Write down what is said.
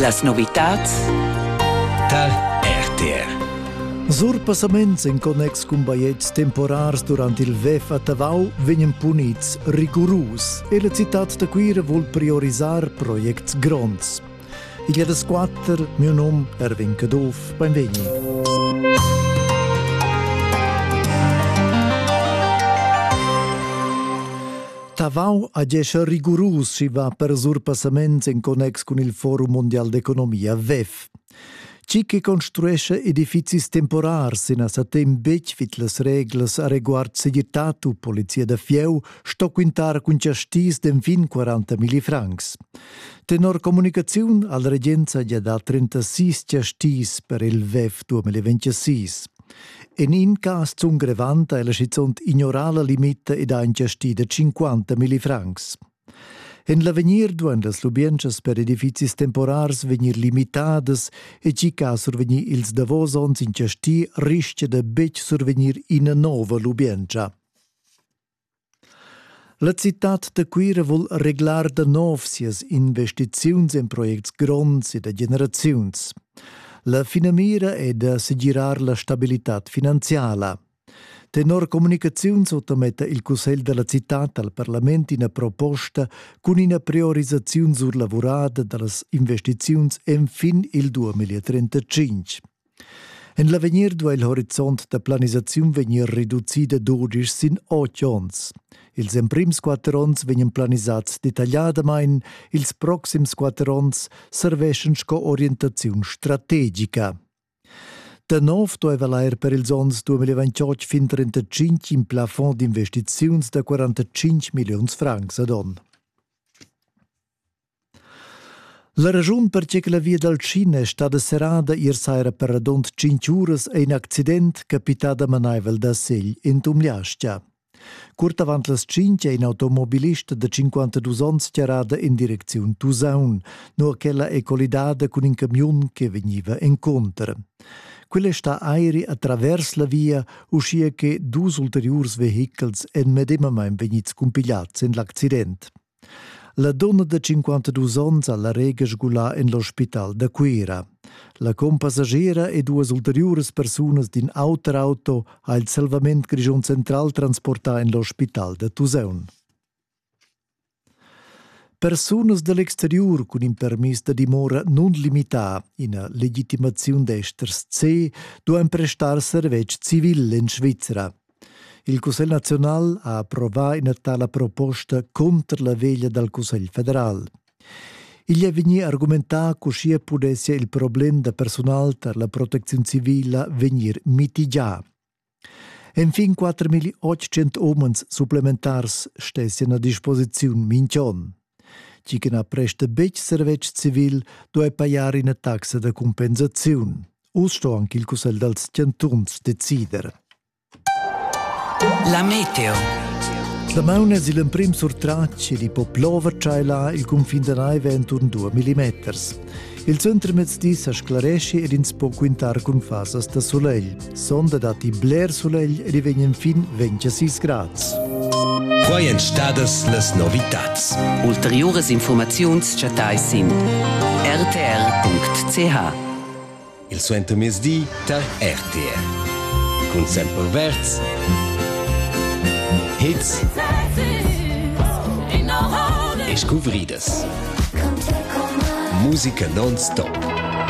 Las novitads tar RTR. Surpassaments en connex cun baiets temporars durant il WEF a Tavau vegnan punids rigurus e la citad da Cuira vul priorisar projects gronds. Igl è das quatter, mio nom Erwin Caduff, benvegni. Tavau ad esser rigurus si va per surpassaments en connex cun il Forum Mondial d'Economia WEF. Chi che construesce edifizis temporars in sa temp betg vid las reglas a reguard segirtad u polizia da fieu sto quintar cun chastis d'enfin 40 milli francs. Tenor comunicaziun al regenza gia da 36 chastis per il WEF 2026. En in cas zun grevant è la schizunt ignorala limita ed ha ingestida 50 millifrancs. En l'avegnir duan las lubientschas per edifizis temporars vegnir limitadas e tgi che ha survegnì ils davos onns ingestì rischia da betg survegnir ina nova lubientscha. La citad da Cuira vul reglar da nov sias investiziuns en projects gronds e da generaziuns. La finamira è da segirar la stabilitad finanziala. Tenor Communicaziun sottametta il Cussegl della cittad al parlament ina proposta cun ina priorisaziun surlavurada dallas investiziuns enfin il 2035. En l'avegnir duai il horizont da planisaziun vegnir reducì da dudisch sin otg onns. Ils emprims quatter onns vegnan planisads detagliadamain, ils proxims quatter onns serveschan sco orientaziun strategica. Da nov dueva l'air per ils onns 2028 fin 35 in plafond d'investiziuns da 45 milliuns francs ad onn. La raschun per che la via dal Cina è stada serrada ier saira per radund tschintg uras è in accident capità damanaivel da segl in Tumliastia. Curt avant las cinq è in automobilist da 52 onns charrada in direcziun Tusaun, nur ch'ella è collidada cun in camiun che vegniva encunter. Quella è sta airi a travers la via, uschia che dus ulteriurs vehichels èn medemamain vegnids cumpigliads en l'accident. La donna de 52 onns ha la rega sgulà en l'ospital da Cuira. La compassagera e duas ulteriuras persunas d'in auter auto ha il Salvament Grigion Central transportà en l'ospital da Tusaun. Persunas dell'exteriur cun in permis da dimora non limità, ina legitimaziun d'esters C, duan prestar servetsch civil en Svizra. Il Cussegl naziunal ha approvà ina tala proposta cunter la veglia dal Cussegl federal. Igl è vegnì argumentà ch'uschia pudessia il problem da persunal tar la protecziun civila vegnir mitigià. Enfin 4.800 umens supplementars stessan a disposiziun minch'on. Tgi che na presta betg servetsch civil duai pajar ina taxa da compensaziun. Uss sto anche il Cussegl dals chantuns decider. La meteo. La mauna è l'emprim surtratg e di po plover tschailar il cunfin da naive enturn 2 mm. Il suntermezdi sa sclaresci ed ins po quintar cun fasas da sulegl. Sonda datti bler sulegl ed i vegn enfin 26 grads. Quai èn stadas las novitads. Ulteriuras informaziuns chattai sin rtr.ch. Il suentermezdi tar RTR. Cun semperverds, hits e scuvridas. Musica non-stop.